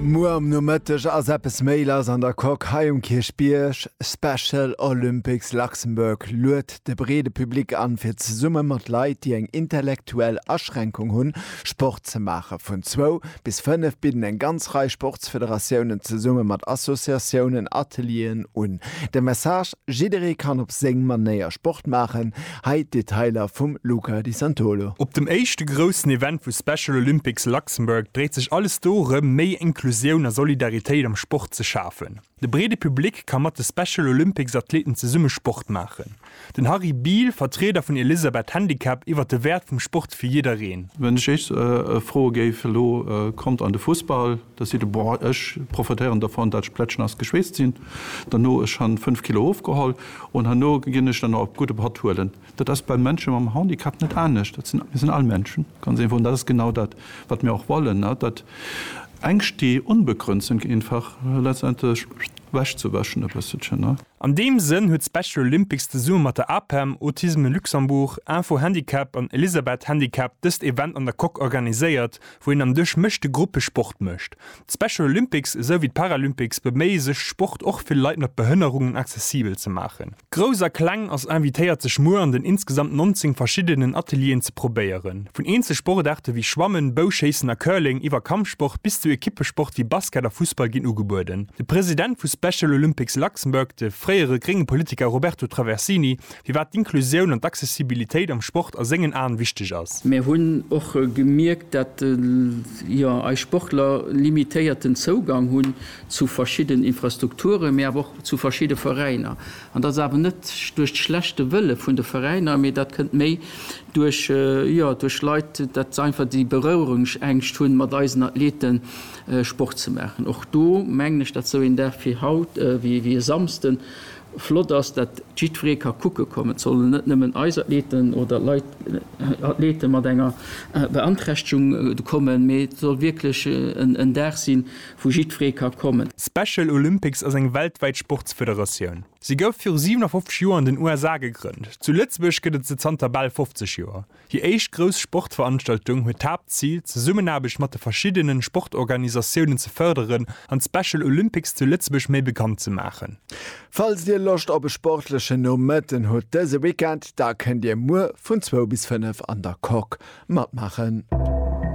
Muer am Nomëtteg ass eppes méi lass an der Coque hei um Kierchbierg. Special Olympics Luxembourg luet de breede Public an, fir zesumme mat Leit, déi eng intellektuell Aschränkung hunn, Sport ze maachen. Vun zwou bis fënnef bidden eng ganz Rei Sportsfederatiounen zesumme mat Associatiounen Atelieren un. De Message, Jidderee kann op seng Manéier Sport maachen. Hei d'Detailer vum Luca Di Santolo. Op dem éischte groussen Event vu Special Olympics Luxembourg dréit sech alles dorëm, méi Inklusioun a Solidaritéit am Sport ze schafen. De breede Public ka mat de Special Olympics Athleten zesumme Sport maachen. Den Harry Biel, Vertrieder vun Elisabeth Handicap iwwer de Wäert vum Sport fir jiddereen. Wann ech Iech froe géif elo, Kommt an de Fussball! Da seet e, Boah, ech profitéieren dervon, dat ech plätschnass geschweesst sinn. Derno, ech han 5 Kilo ofgeholl un herno ginn ech dann nach op gudde Patt huelen. Dat ass bei Mënsche mam Handicap net anescht. Dat sinn, mir sinn all Mënschen, ganz einfach. An dat ass genau dat, wat mir och wollen, dat Ängscht, déi unbegrënnt sinn, einfach letztendlech ewechzewäschen e bësselchen. An deem Sënn huet Special Olympics zesumme mat der APEM, Autisme Luxembourg, Info Handicap an Elisabeth Handicap dëst Event an der Coque organiséiert, wou een am Duerch mëschte Gruppe Sport mécht. D'Special Olympics esou wéi d'Paralympics beméie sech Sport och fir Leit mat Behënnerungen accessibel ze maachen. Grouss a Kleng ass invitéiert sech muer an den insgesamt 19 verschiddenen Atelieren ze probéieren. Vun eenzel Sportaarte wéi Schwammen, Bouschéissen a Curling iwwer Kampfsport bis zu Ekippesport wéi Basket a Fussball ginn ugebueden. De President vu Special Olympics Luxembourg, de fréiere grénge Politiker Roberto Traversini firwat d'Inklusioun an d'Accessibilitéit am Sport a sengen Aen wichteg ass. Mär hunn och gemierkt, dat jo eis Sportler limitéierten Zougang hunn zu verschidden Infrastrukturen, mee awer och zu verschidde Veräiner. An dat ass awer net duerch d'schlechte Wëlle vun de Veräiner, mee dat kënnt méi duerch, jo, duerch Leit, dat se einfach déi Bereuerungsängscht hunn, mat eisen Athlete Sport ze maachen. Och do mengen ech, dat sou een Dag wéi haut, wéi e Samsden, Flott ass, datt jiddweree ka kucke kommen. Et sollen net nëmmen eis Athleten oder Leit, Athlete mat enger Beanträchtegung kommen, mee et soll wierklech en Dag sinn, wou jiddweree ka kommen. Special Olympics ass eng weltwäit Sportsfederatioun. Se gouf viru 57 Joer an den USA gegrënnt. Zu Lëtzebuerg gëtt et se zanter bal 50 Joer. Déi éischt grouss Sportveranstaltung huet d'Haaptzil, d'Zesummenaarbecht mat de verschiddene Sportorganisatiounen ze fërderen an d'Special Olympics zu Lëtzebuerg méi bekannt ze maachen. Falls dir Loscht op e sportlechen Nomëtten hutt dëse Weekend, da kënnt dir muer vun zwou bis fënnef an der Coque matmaachen.